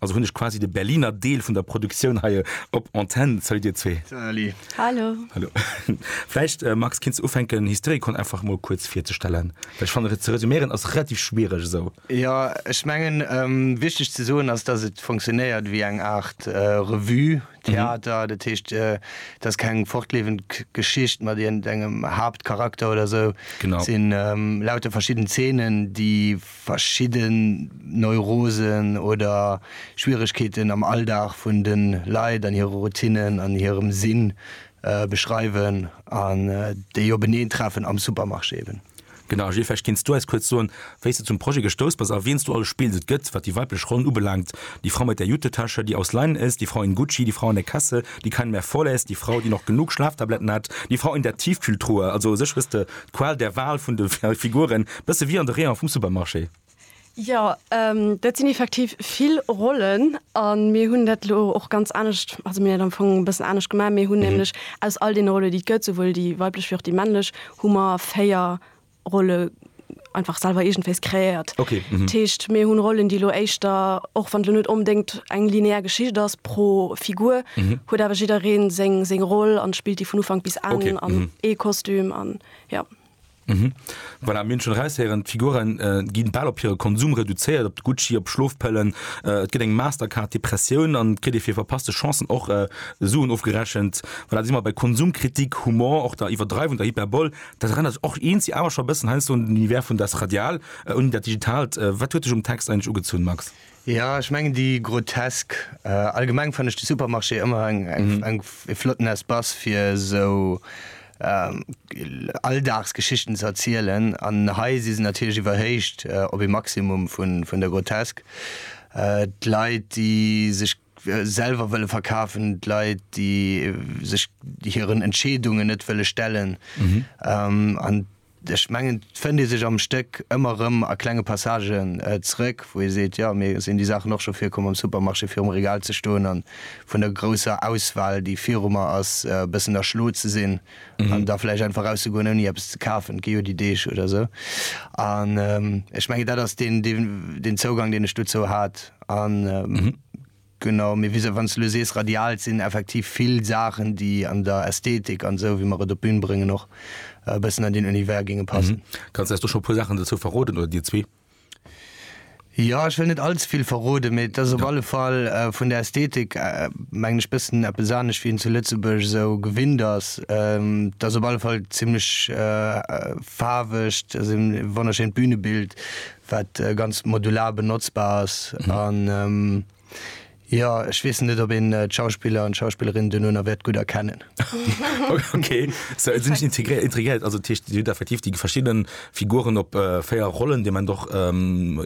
Also hunn ech quasi de Berliner Deel vun der Produktioun hei op Antenn. Salut dir zwee. Salut. Hallo. Hallo. Vläicht, äh, Max, kenns du ufänken, Hysterikon einfach mol kuerz virzestellen? Well ech fannen, ze resümieren ass relativ schwiereg esou. Jo, ech mengen, ähm, wichteg ze soen ass, dass et funktionéiert wéi eng Aart, äh, Revue, Theater. Dat heescht, äh, et ass keng fortlewend Geschicht mat iergendengem Haaptcharakter oder esou. Genau. Et sinn, ähm, lauter verschidden Zeenen, déi verschidden Neurosen oder Schwieregkeeten am Alldag vun de Leit an hire Routinnen an hirem Sinn beschreiwen an déi openeen treffen am Supermarché eben. Genau, Gilles, vläicht kinns du eis kuerz soen, wéi s de zum Projet gestouss bass a wiens du alles spills. Et gëtt, wat déi weiblech Rollen ubelaangt, die Frau mit der Jutetasche, die aus Leinen ist, die Frau in Gucci, die Frau an der Kasse, die keinen mehr vorlässt, die Frau, die noch genug Schlaftabletten hat, die Frau in der Tiefkühltruhe. Also u sech hues de D'Qual der Wahl vun de Figuren, bësse wéi an de Rayone vum Supermarché. Jo, dat sinn effektiv vill Rollen a mir hunn dat elo och ganz anescht, also mir hunn dat am Fong e bëssen anescht gemaach. Mir hunn nämlech aus all deene Rolle, déi et gëtt, souwuel déi weiblech wéi och déi männlech, hu mer véier Rolle einfach selwer eegentféiss kreéiert. Dat heescht, mir hunn Rollen, déi elo éischter, och wann et elo net onbedéngt, eng linear Geschicht ass pro Figur huet awer jiddereen seng seng Roll an spillt déi vun Ufank bis Enn Okay, an mhm. ee Kostüm an ja. Voilà, mir hunn schonn eraushéieren, d'Figuren äh, gi bal op hire Konsum reduzéiert, op de Gucci, op Schlofpëllen. Äh, et gëtt eng Mastercard Depressioun an et kritt ee fir verpasste Chancen och äh, Suen ofgerechent. Voilà, da si mer bei Konsumkritik, Humor, och der Iwwerdreiwung, der Hyperbol. Dat erënnert sech och eens, si awer scho e bëssen heiansdo un den Univers vun Das Radial, äh, un dat Digitalt. Äh, wat huet dech um Text eigentlech ugezunn, Max? Jo ech mengen déi grotesk. Allgemeng fannen ech de Supermarché ëmmer eng e flotten Espace fir esou Alldagsgeschichten ze erzielen an hei si se natierlech iwwerhéicht op e Maximum vun der Grotesk. D'Leit déi sech selwer wëlle verkafen, d'Leit déi sech hiren Entscheedungen net wëlle stellen an. Ech mengen, et fënnt ee sech am Stéck ëmmer erëm a klenge Passagen zeréck, wou ee seet, jo, mir sinn déi Saachen och scho virkomm am Supermarché, virum Regal ze stoen a vun der grousser Auswahl, déi viru mer ass, e bëssen erschlo ze sinn an da vläicht einfach erauszegoen, ouni eppes ze kafen. Et gi jo déi Deeg oder esou. An ech mengen, dat ass deen Zougang, deen ech dozou hat. Genau, mee wisou, wann s de elo sees radial, et sinn effektiv vill Saachen, déi an der Ästhetik an esou, wéi mer et op d'Bün bréngen, och e bëssen an deen Univers géinge passen. Kanns de eis do scho e puer Saachen dozou verroden, oder dir zwee? Jo, ech wëll net all ze vill verroden, mee et ass op alle Fall vun der Ästhetik, mengen ech, bëssen eppes anescht, wéi een zu Lëtzebuerg esou gewinnt ass. Et ass op alle Fall zimmlech faarwegt, ass e wonnerschéint Bünebild, wat ganz modular benotzbar ass an jo ech weess net op een d'Schauspiller an d'Schauspillerin duerno wäert gutt erkennen. Okay sou et sinn ech integréiert intriguéiert also dat heescht dir hutt effektiv déi verschidde Figuren op 4 Rollen déi Ament och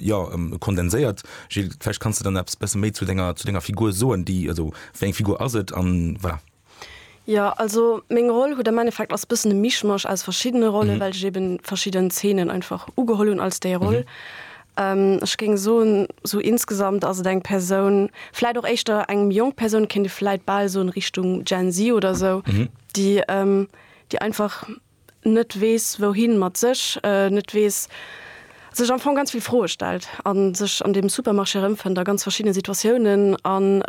jo kondenséiert. Gilles vläicht kanns de dann eppes e bësse méi zu denger zu denger Figur soen déi also wéi eng Figur ass et an wa Jo, also meng Roll huet am Endeffekt ass bëssen e Mischmasch aus verschiddene Rollen, mhm. well ech eben verschidden Zeenen einfach ugeholl hunn als déi Roll. Mhm. Ähm, ech ging so so insgesamt also deg Person vielleicht auch echter engem jung Person kind vielleicht ball so in Richtung Gen Z oder so mhm. die ähm, die einfach net weess wouhin mat sech, net weess, sech am Fong ganz vill Froe stellt a sech an deem Supermarché erëmfënnt a ganz verschiddene Situatiounen an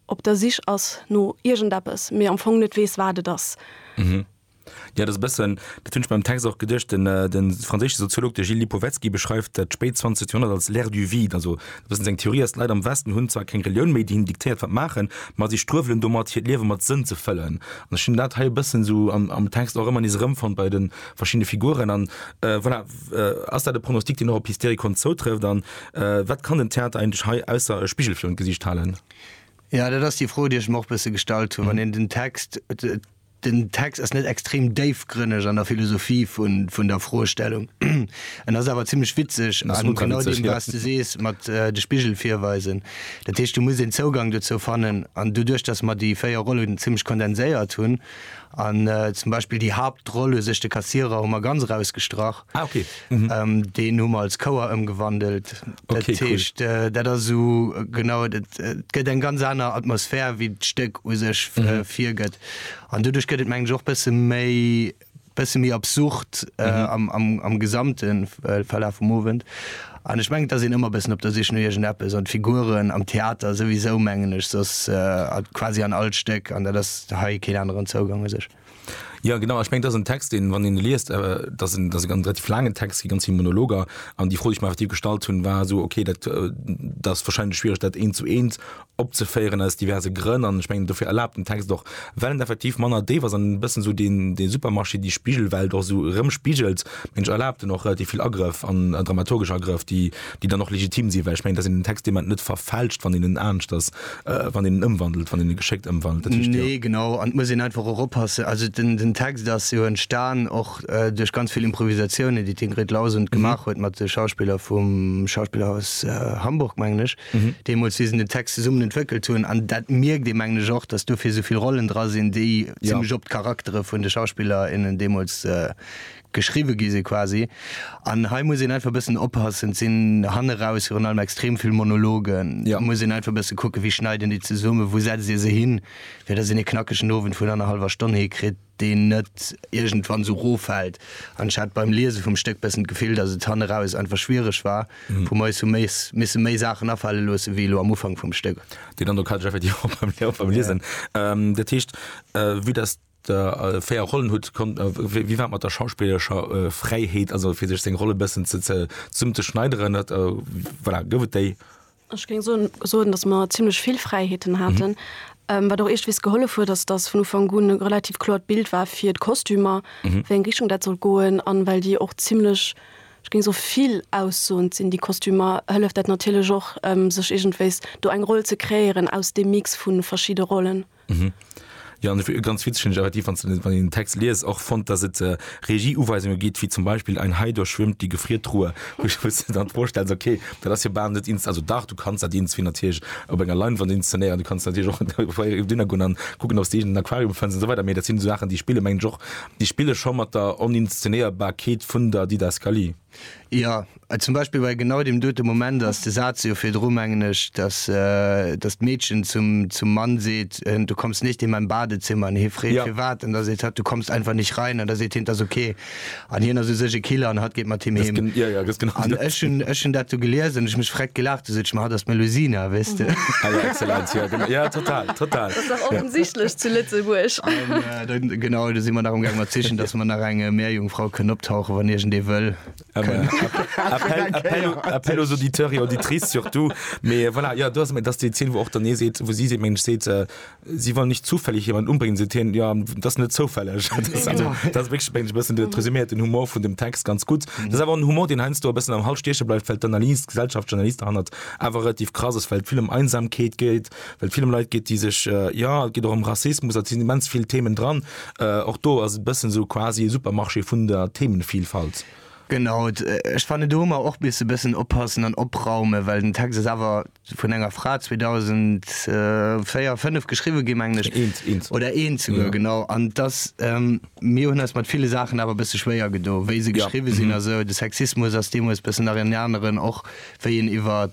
op der Sich ass no iergendeppes, mee am Fong net weess wat et ass. Mhm. Jo, dat ass e bëssen, dat hunn ech beim Text och geduecht. De franséische Soziolog, de Gilles Lipovetsky, beschreift dat spéit 20. Joerhonnert als l'ère du vide, also Wëssen seng Theorie ass, d'Leit am Westen hunn zwar keng Relioun méi, déi hinnen diktéiert wat maachen, ma si struewelen domat hiert Liewe mat Sënn ze fëllen. An ech hunn dat hei e bëssen esou am Text och ëmmer nees erëmfonnt bei de verschiddene Figuren. An voilà, ass dat e Pronostic, deen och op Hysterikon zoutrëfft? An wat kann den Theater eigentlech hei ausser e Spigel virun d'Gesicht halen? Jo, dat ass déi Fro, déi ech mer och e bësse gestallt hunn, wann een den Text, Den Text ass net extrem déifgrënneg an der Philosophie vun der Froestellung. En ass awer zimmlech witzeg a genau deem, wat s de sees mat de Spigel virweisen. Dat heescht, do muss een Zougang dozou fannen. An doduerch, datt mer déi véier Rollen zimmlech kondenséiert hunn an zum Beispill déi Haaptroll u sech, de Kassierer, hu mer ganz erausgestrach, Ah, okay. Mhm. Deen hu mer als Chouer ëmgewandelt. Okay, dat heescht, cool. dat ass esou genau, et gëtt eng ganz aner Atmosphär, wéi d'Stéck u sech virgëtt. Mhm. An doduerch gëtt et mengen ech och bësse méi, bësse méi absurd am, am, am gesamte Verlaf vum Owend. An ech mengen, et ass een ëmmer bëssen op der Sich no iergendeppes. An d'Figuren am Theater souwisou, mengen ech, soss quasi an all Stéck. An dat ass hei keen aneren Zougang u sech. Ja genau ech meng dat en Text deen wann een e liest dat en dat e ganz relativ laangen Text gi ganz vill Monologer an déi Fro déi ech mer effektiv gestallt hunn war esou okay dat äh, dat ass warscheinlech schwiereg dat eent zu eent opzeféieren aus diverse Grënn an ech mengen dofir erlaabt den Text och well en effektiv manner déif ass an e bëssen esou deen dee Supermarché déi Spigelwelt och esou erëmspigelt mengen ech erlaabt en och relativ vill Agrëff an dramaturgesch Agrëff déi déi dann och legitim sinn, well ech mengen, dass een den Text deemandem net verfälscht, wann deen en anescht ass, wann deen en ëmwandelt, wann deen e geschéckt ëmwandelt. Dat heescht jo. Nee, genau. An et muss een einfach och oppassen. Also den, den Text ass jo entstan och duerch ganz vill Improvisatiounen, déi d'Ingrid Lausent gemaach huet mat de Schauspiller vum Schauspillerhaus Hamburg, mengen ech, deemools, wéi se den Text zesummen entwéckelt hunn. An dat mierkt ee, mengen ech, och, dass dofir esou vill Rollen dra sinn, déi zimlech op d'Charaktere vun de Schauspiller, innen deemools geschriwwe gi si quasi an hei muss een einfach e bëssen oppassen, et sinn hanne raus virun allem extrem vill Monologen, da muss een einfach e bësse kucken, wéi schneit een déi zesummen, wou setzt ee se hin, fir datt een ee knackegen Owend vun annerhallwer Stonn hikritt, deen net iergendwann esou ro fält an ech hat beim Liese vum Stéck e bëssen d'Gefill, datt et hanne raus einfach schwiereg war, wou mer eis hu misse méi Saachen afale loosse wéi elo am Ufank vum Stéck. Deen Androck hat ech effektiv och beim Liesen. Dat heescht, vue dass. der véier Rollen hutt, konnt wéi war mat der schauspillerescher Fräiheet, also fir sech seng Rolle bëssen ze ze summen, ze schneideren, dat voilà, gouf et déi? Ech géing soen, soen, datt mer zimlech vill Fräiheeten haten, wat och eeschtwees gehollef huet, ass datt vun Ufank un e relativ kloert Bild war fir d'Kostümer, wéi eng Richtung dat sollt goen an well déi och zimlech, ech géing soe vill aussoend sinn, déi Kostümer, hëlleft dat natierlech och, sech iergendwéis do eng Roll ze kreéieren aus deem Mix vu verschidde Rollen. Mhm. Jo an e ganz witzegen Jarretief wann den wann den Text liest och fonnt dat et äh, Regieuweisunge gitt wéi zum Beispiel ein Hai durchschwimmt die Gefriertruhe wo ich muss dir dann vorstellen okay dat ass jo bal net ins also dach du kannst dat irgendwie natierlech op enger Leinwand inszenéieren du kannst natierlech och Dinner gonn an kucken ob's de een den Aquarium fënns an esou weider mee dat sinn esou Saachen déi spille mengen ech och déi spille scho mat der Oninszenéierbarkeet vun der Didaskalie. Jo, zum Beispill bei genau deem dote Moment ass de Saz jo virdru, mengen ech, dass d'Meedchen zum Mann seet, Du kommst nicht in mein Badezimmer. An hie freet, Firwat? An da seet hatt, Du kommst einfach nicht rein. An da seet hien, 't ass ok. An hien ass u sech e Killer an hatt geet mat him heem. An ech hunn dat do gelies an ech hu mech vreckt gelaach. Du sot ech mer, Hatt ass d'Melusina, weess de. Ah jo, excellent. Jo, total. Total. Ass dach offensichtlech zu Lëtzebuerg. Genau, do si mer nach um Gaang mat sichen, dass mer nach eng Meerjungfrau kënn optauchen, wann iergend ee wëll. Appel aux auditeurs et auditrices surtout. Mee voilà, jo, do ass et, dass déi Zeen, wou och den ee seet, wou si seet, Mensch, seet, si wollen nicht zufällig jemanden umbringen, seet hien, jo, dat ass net zoufälleg. Dat ass also, dat ass wierklech, mengen ech, e bëssen dat resüméiert den Humor vun dem Text ganz gutt. Dat ass awer och en Humor, deen heiansdo e bëssen am Hals stieche bleift, well d'Analyse, d'Gesellschaftsanalyse derhannert awer relativ krass ass, well et vill ëm Einsamkeet geet, Well et vill ëm Leit geet, déi sech, jo, et geet och ëm Rassismus, et sinn immens vill Themen dran. Och do ass et e bëssen esou quasi e Supermarché vun der Themenvielfalt. Genau, ech fannen, do hu mer och misse e bëssen oppassen an opraumen, well den Text ass awer vun enger Fra 2004, fënnef geschriwwen ginn, mengen ech. Eent, eent. Oder eent souguer, genau. An et ass, mir hunn eis mat ville Saachen awer e bësse schwéier gedo, wéi se geschriwwen sinn a sou. De Sexismus ass deemools e bëssen nach en aneren och wéi en iwwer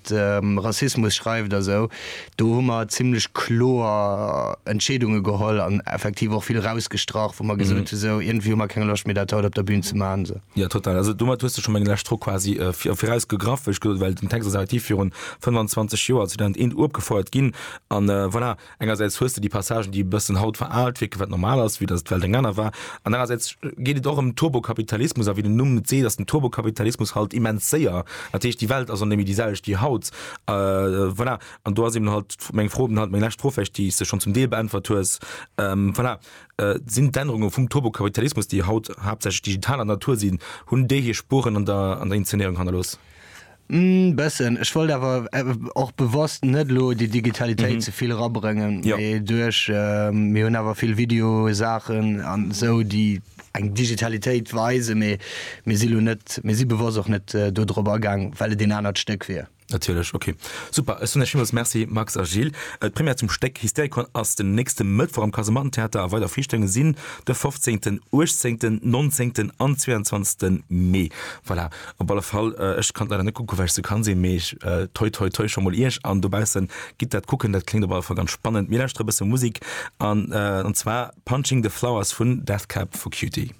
Rassismus schreift a sou, do hu mer zimmlech kloer Entscheedunge geholl an effektiv och vill erausgestrach, wou mer gesot hu sou, iergendwéi hu mer keng Loscht méi dat haut op der Bün ze maachen esou. Jo, total. Also domat hues de scho meng lescht Fro quasi virausgegraff, wéi ech gesot hunn, well den Text ass effektiv virun 25 Joer, 2001, uopgefouert ginn an voilà. Engersäits hues de déi Passagen, déi e bëssen haut veraalt wierken, wat normal ass, vue dass d'Welt eng aner war, an anerersäits geet et och ëm Turbokapitalismus, a wéi den Numm et seet, ass den Turbokapitalismus halt immens séier, dat heescht, déi Welt ass och net méi déi selwecht wéi haut. Voilà, an do ass eben halt meng Fro, halt meng lescht Fro vläicht, déi s de schonn zum Deel beäntwert hues, voilà, sinn d'Ännerunge vum Turbokapitalismus, déi haut haaptsächlech digitaler Natur sinn, hunn déi hir Spuren an der Inszenéierung hannerlooss? Mmh, bessen. Ech wollt awer och bewosst net elo déi Digitalitéit ze vill erabrëngen, mee duerch, mir hunn awer vill Videosaachen an esou, déi eng Digitalitéit weisen, mee mir si elo net, mir si bewosst och net dodrop agaang, well et een anert Stéck wier. Natierlech, ok. Super, ech soen Iech villmools Merci Max a Gilles. D'Première zum Stéck Hystericon ass den nächste Mëttwoch am Kasemattentheater a weider Viichtunge sinn de 15., 18., 19. an 22. Mee. Voilà, Op alle Fall, ech kann leider net kucken, well ech ze krank sinn, mee toi toi toi scho mol iech an dobaussen, gitt dat kucken, dat kléngt op alle Fall ganz spannend. Mir lauschtere e bësse Musik an, an zwar Punching the Flowers vun Death Cab for Cutie.